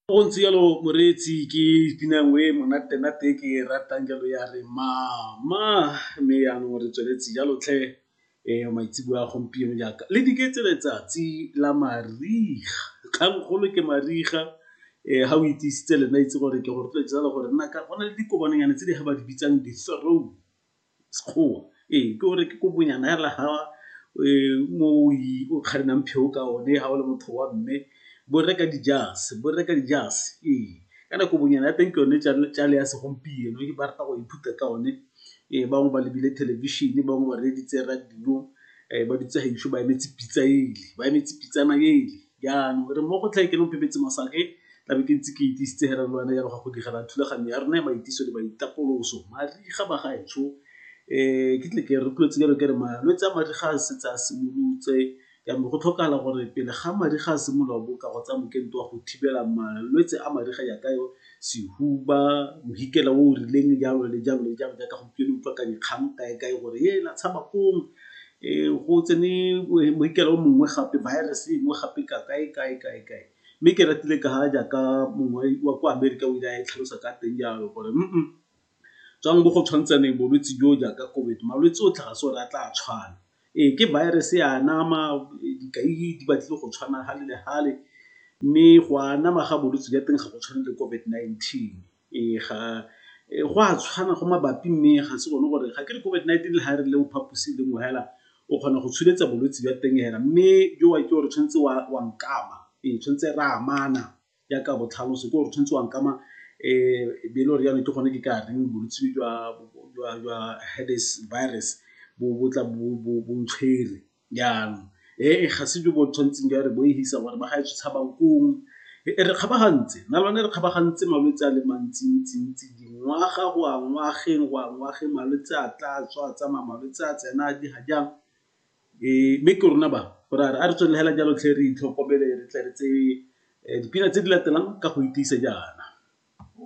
Go ntse jalo moreetsi ke pina nngwe e monate-nate e ke e ratang jalo ya re mama, mme jaanong re tsweletse jalo tlhe maitseboa a gompieno jaaka le dike tse letsatsi la mariga, kgang kgolo ke mariga ga o itiisitse le nna itse gore ke go rotloetsa jalo gore nna ka go na le dikobanyana tse di ga ba di bitsang di-throne. Sekgowa. Ee, ke gore ke kobonyana hela ha mo o kgarinang pheo ka one ha o le motho wa mme, bo rre ka dijase, bo rre ka dijase. Ee, kana kobonyana ya teng ke yone tšale ya segompieno e ba rata go ithuta ka one. Ee, bangwe ba lebile thelebišene, bangwe ba reeditse radio ba dutse gaetsho ba emetse pitsa ele, ba emetse pitsana ele. Jaanong re mo go tlhe ke nomphepetse masake tla be ke ntse ke itisitse he re lwana jalo ga go digela thulaganyo ya rona ya maitiso le maitapoloso mariga ba gaetsho um eh, ke tle ke rotloetse jalo ke re malwetse a mariga a setse a simolotse jaanong go tlhokagala gore pele ga mariga a simolola boka go tsa mokento wa go thibela malwetse a mariga jaaka yo sehuba mohikela o o rileng jalo le jalo le jalo jaaka gompieno utlwa ka dikgang kae kae gore e la tshaba kong um go tsene mohikela o mongwe gape virus e nngwe gape ka kae kae kae kae mme ke ratile ka jaaka mongwe wa ko amerika o ile a e tlhalosa ka teng jalo gore Tswang mo go tshwantshaneng bolwetse jo jaaka COVID, malwetse otlhe ga se gore a tla a tshwana. Ee, ke virus e a anama, dikai di batlile go tshwana gale le gale, mme go anama ga bolwetse jwa teng ga go tshwane le COVID-19. Ee, go a tshwana, go mabapi mme ga se gone gore, ga ke re COVID-19 le ha e re le mo phaposing le nngwe fela, o kgona go tsholetsa bolwetse jwa teng fela, mme jowa ke gore tshwanetse wa nkama, ee tshwanetse re amana. jaaka botlhaloso ke gore tshwanetse wa nkama um be le gore jaanong ke gone ke ka reng bolwetse jwa herpes virus bo tla bo ntshwere jaanong. Ee ga se jo bo tshwanetseng jwa re bo e fisa gore ba gaetsho tshabang koo, e re kgabagantse nna le one re kgabagantse malwetse a le mantsi-ntsi-ntsi dingwaga go ya ngwageng go ya ngwageng malwetse a tla tswa a tsamaya malwetse a tsena a di ga jaana Ee, mme ke rona ba, gore a re tswelele hela jalo tlhe re itlhokomele re tle re tseye dipina tse di latelang ka go itiisa jaana.